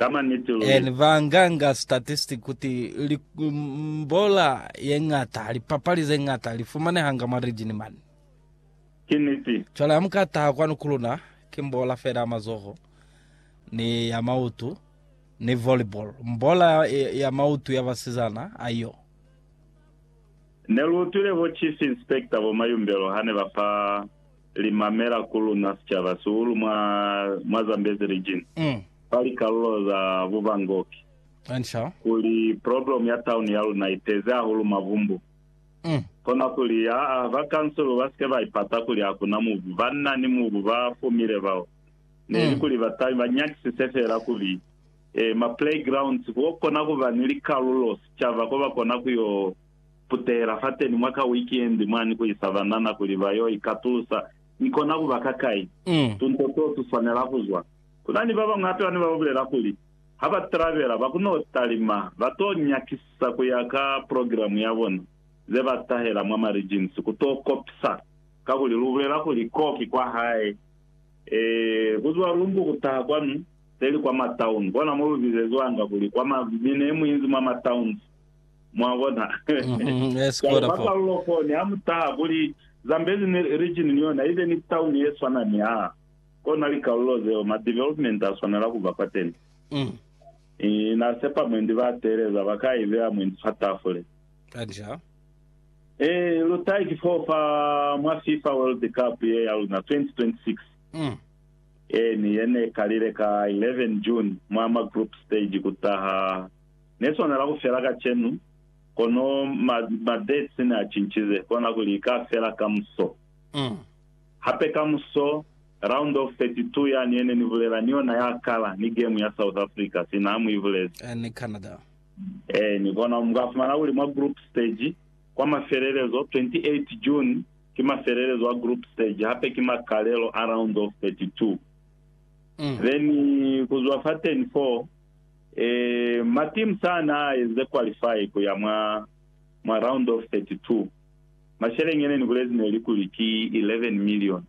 Eeni, ba nganga statistic kuti li, mbola ye ngata, lipapali ze ngata li fumanehanga mwa region mani. Ki niti. Cwale ha mu ka taha kwanu ku luna, ki mbola fela ya mazoho, ni ya mautu, ni volleyball. Mbola ya mautu ya basizana, aiyo. Ne lu utwile ho Chief Inspector bo Mayumbelo ha ne ba fa li mamela ku luna sicaba sihulu mwa, mwa Zambezi Region, fa likalulo za Buvangoki, kuli problem ya town ya luna i tezi hahulu mavumbu. Kona kuli, aa, ba kansulu ba sike ba ipata kuli hakuna mubu, banna ni mubu ba fumile bao. Neli kuli ba tabi ba nyakisise feela kuli, ee, ma playgrounds, ku yo kona kuba ni likalulo sicaba ko ba kona ku yo. putela fateni mwa ka wikendi mwani ku isa banana kuli ba yo ikatulusa. Ni kona ku ba kakai? Tunto too tu swanela ku zwa. Ku na ni ba bañwi hape bane ba bulela kuli ha ba trabela ba ku n'o talima, ba t'o nyakisisa ku ya ka progilamu ya bona ze ba tahela mwa Marijinsi ku t'o kopisa. Kakuli lu bulela kuli k'o ki kwa hae. Ee, ku zwa Lumbu ku taha kwanu, peli kwa Mataunu. Kona mo lu bizezwanga kuli kwa ma, mine ye mu inzi mwa Matauns. Mwabona? Mhm, yes, Cwalo kota ka fo. karolo koni, ha mu taha kuli Zambezi ni region ni yona ibe ni town ye swana ni aa, kona likarolo zeo ma development a swanela kuba kwateni. Mm, Ii, Na sepa mwendi ba teeleza ba ka ibeya mwendi fa tafule. kanja. Ee, lu tahe ki foo fa mwa FIFA World Cup ye ya luna 2026. Mm, Ee, ni ye ne kalile ka 11 June mwa ma group stage ku taha Ne swanela ku fela kacenu, kono ma, mabetsi ne a cincize, kona kuli i ka fela kamuso. Hape kamuso, Round of 32 yani ye ne ni bulela ni yona ya kala ni gemu ya South Africa, sina ha mu i bulezi. Eh, ni Canada. Eh, ni kona, mu ka fumana kuli mwa group stage, kwa mafelelezo, 28 June ki mafelelezo a group stage, hape ki makalelo a Round of 32. Then, ku zwa fateni foo, Ee, matimu sa na a eze qualify ku ya mwa, mwa round of 32. Masheleñi ye ne ni bulezi ne li kuli ki 11 million,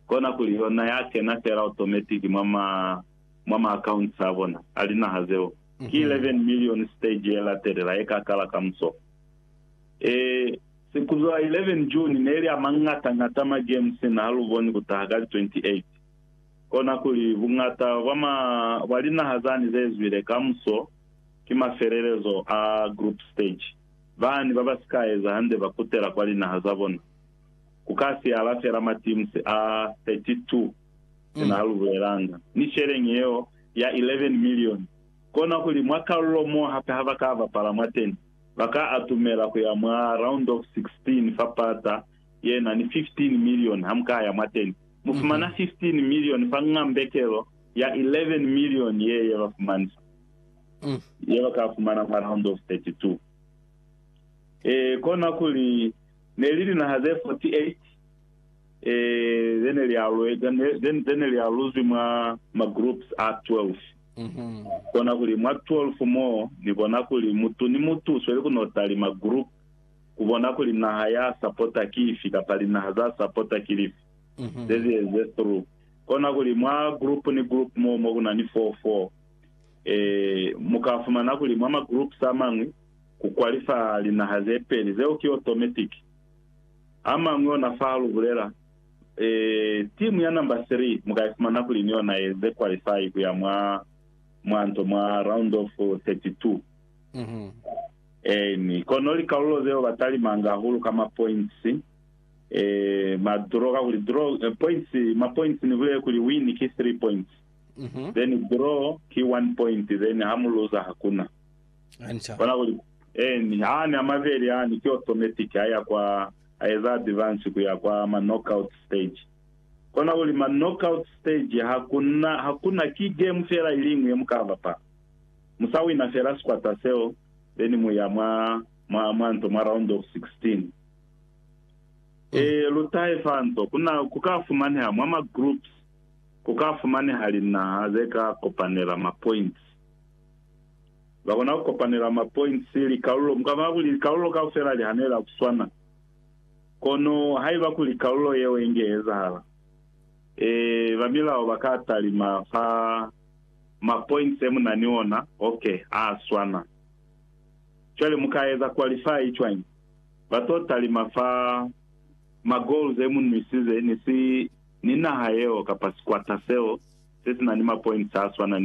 kona kuli yona ya kena fela automatic mwa ma, mwa ma accounts a bona a linaha zeo. Ki 11 million stage ye latelela ye ka kala kamuso. Ee, se ku zwa 11 June ne li a mañata-ñata ma games na ha lu boni ku taha ka li 28. kona kuli buñata bwa linaha zani zezwile kamuso ki mafelelezo a group stage, bani babasika eza hande bakutela kwa linaha zabona. Kuka siala feela mateams a 32 ena alubulelanga, ni sheleñi yeo ya 11 million, kona kuli mwa kalulo mo hape habaka bapala mwateni, baka atumela kuya mwa round of 16 fa pata yena ni 15 milioni hamukaya mwateni, mufumana 15 milioni fa ng'ambekelo ya 11 milioni ye yebafumaniswa, yebakafumana mwa round of 32. E, kona kuli neli linaha ze 48 e, zene lialuzwi mwa ma groups a 12. Kona kuli mwa 12 mo, ni bona kuli mutu ni mutu usweli kuno talima group kubona kuli naha ya sapota ki ifi kapa linaha za sapota ki lifi, zezieze through. Kona kuli mwa group ni group moo mo kuna ni four four, eh, muka fumana kuli mwa ma groups amañwi ku qualify linaha ze peli, zeo ki automatic. Amañwi ona fa halu bulela, eh, team ya number three muka ifumana kuli ni yona eze qualify kuya mwa, mwa nto, mwa round of 32. Eeni, kono likalulo zeo ba talimanga hahulu ka mapoints, eh, ma draw, kakuli draw, eh, points, mapoints ni bulele kuli win ki three points, then draw ki one point, then ha mu luza hakuna. Hanca. Bona kuli, eeni, aani a mabeli aani ki automatic, a ya kwa, a eza advance ku ya kwa ma knockout stage. Kona kuli ma knockout stage hakuna, hakuna, ki game feela iliñwi ye mu ka bapala. Mu sa wina fela sikwata seo, then mu ya mwa, mwa, mwa nto, mwa round of 16. Ee, lu tahe fa nto. Ku na, ku ka fumaneha mwa ma groups, ku ka fumaneha linaha ze ka kopanela ma points. Za kona ku kopanela ma points, likalulo, mu ka bona kuli likalulo kaufela li hanela ku swana. Kono haiba kuli kalulo yeo inge ezahala, ee, ba milao ba ka talima fa. ma points e muna ni ona, ok, a a swana. Cwale mu ka eza qualify cwañi? Ba to talima fa ma goals e mu nwisize ni si, ni naha yeo kapa sikwata seo se si na ni ma points a swana ni ona.